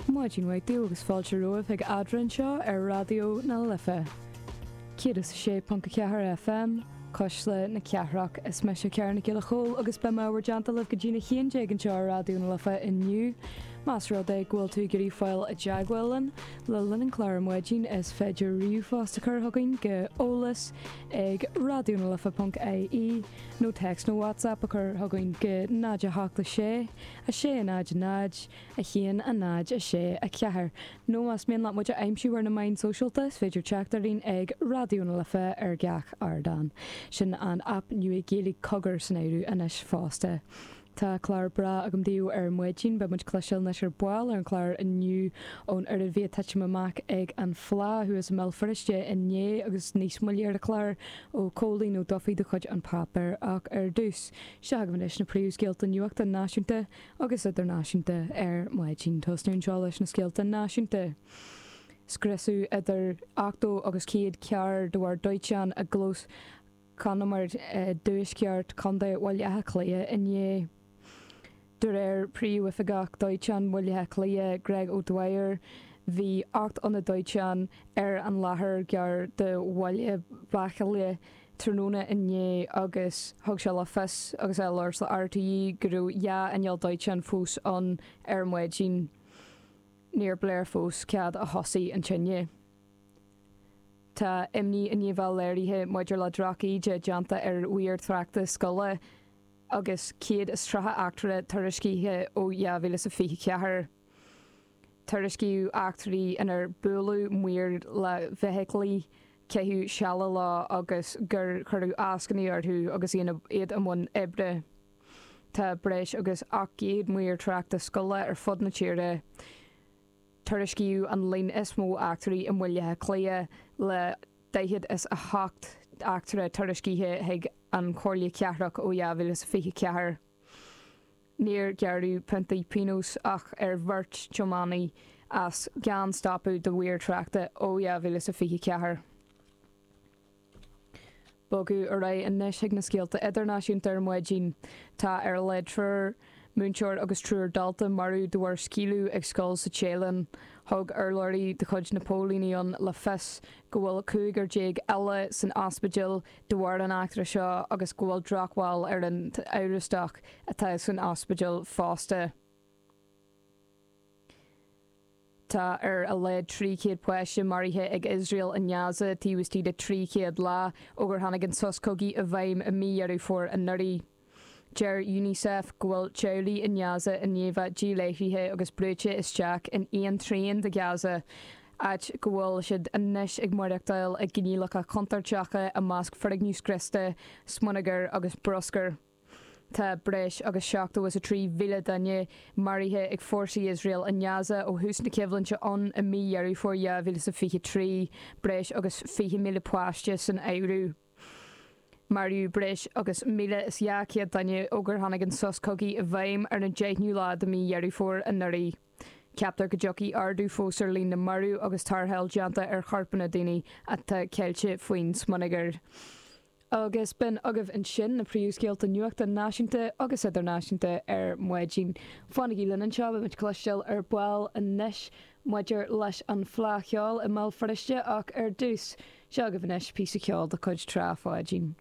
Maidin mhaith daoibh agus fáilte romhaibh chuig Adhmhaidin anseo ar Raidió na Life 106.4 FM, Cuisle na Cathrach. Is mise Karen Nic Giolla Chomhaill agus beidh mé in bhur dteannta libh go dtí a 11 anseo ar Raidió na Life inniu. Más rud é go bhfuil tú ag iarraidh fáil i dteagmháil linn le linn an chláir ar maidin is féidir ríomhphost a chur chugainn go eolas ag raidionalife.ie nó text nó WhatsApp a chur chugainn go 0 7 6 6, 0, 0, 1, 0, 6, 4, nó más mian leat muid a aimsiú ar na meáin shóisialta, is féidir teacht orainn ag Raidió na Life ar gach ardán. Sin an aip nua Gaeilge Cogar san áireamh anois fosta. Tá clár breá agam daoibh ar maidin, beidh muid ag cloisteáil anois ar ball ar an chlár inniu ón oiread a bhí ag titim amach ag an Fhleá thuas i mBéal Feirste inné agus níos moille ar an chlár ó Cóilín Ó Dufaigh de chuid An Páipéar ach ar dtús Seo chugainn anois na príomhscéalta nuachta náisiúnta agus idirnáisiúnta ar maidin. Tosnaíonn seo leis na scéalta náisiúnta. Scriosadh idir 80 agus 100 carr de bharr dóiteáin i gclós conamair i dtuaisceart Chontae Bhaile Átha Cliath inné. De réir Príomhoifigeach Dóiteáin Bhaile Átha Cliath, Greg O'Dwyer, bhí ocht n-aonad dóiteáin ar an láthair gar do Bhaile Bachaille tráthnóna inné agus thug sé le fios agus é ag labhairt le RTÉ go raibh dhá inneall dóiteáin fós ann ar maidin. Níor léir fós cad a thosaigh an tine. Tá imní an-domhain léirithe maidir le drochíde déanta ar mhaoir tráchta scoile. agus 130 eachtra tuairiscithe ó 2024. Tuairiscíodh eachtraí inar buaileadh maoir le feithiclí, caitheadh seile leo agus gur cuireadh eascainí orthu agus iad i mbun oibre. Tá breis agus 800 maor tráchta scoile ar fud na tíre. Tuairiscíodh an líon is mó eachtraí i mBaile Átha Cliath le daichead is a hocht eachtra tuairiscithe chuig an Chomhairle Chathrach ó 2024. Níor gearradh piontaí pionóis ach ar bheirt tiománaí as gan stopadh do mhaoir tráchta ó 2024. Ag bogadh ar aghaidh anois chuig na scéalta idirnáisiúnta ar maidin. Tá ar a laghad triúr múinteoir agus triúr dalta marbh de bharr scaoileadh ag scoil sa Téalainn. Thug urlabhraí de chuid na póilíní ann le fios go bhfuil cúigear déag eile san ospidéal de bharr an eachtra seo agus go bhfuil drochbhail ar an amhrastach atá san ospidéal fosta. Tá ar a laghad 300 páiste maraithe ag Iosrael i nGaza taobh istigh de 300 lá ó gur tháinig an sos cogaidh i bhfeidhm i mí Dheireadh Fómhair anuraidh. Deir Unicef go bhfuil teaghlaigh i nGaza díláithrithe agus brúite isteach in aon trian de Ghaza, áit go bhfuil siad anois ag maireachtáil i gcoinníollacha contúirteacha i measc foirgneamh scriosta, smionagar agus bruscair. Tá breis agus 73,000 duine maraithe ag fórsaí Iosrael i nGaza ó thús na coimhlinte ann i mí Dheireadh Fómhair 2023, breis agus 20,000 páiste san áireamh. Maraíodh breis agus 1,200 duine ó gur tháinig an sos cogaidh i bhfeidhm ar an deichniú lá de mhí Dheireadh Fómhair anuraidh. Ceaptar go dtiocfaidh ardú fós ar líon na marbh agus tarrtháil déanta ar chorpanna daoine atá ceilte faoin smionagar. agus b'in agaibh ansin na príomhscéalta nuachta náisiúnta agus idirnáisiúnta ar maidin. Fanaigí linn anseo, beimid ag cloisteáil ar ball anois maidir leis an Fleá Cheoil i mBéal Feirste ach ar dtús, seo agaibh anois píosa ceoil de chuid Trá Pháidín.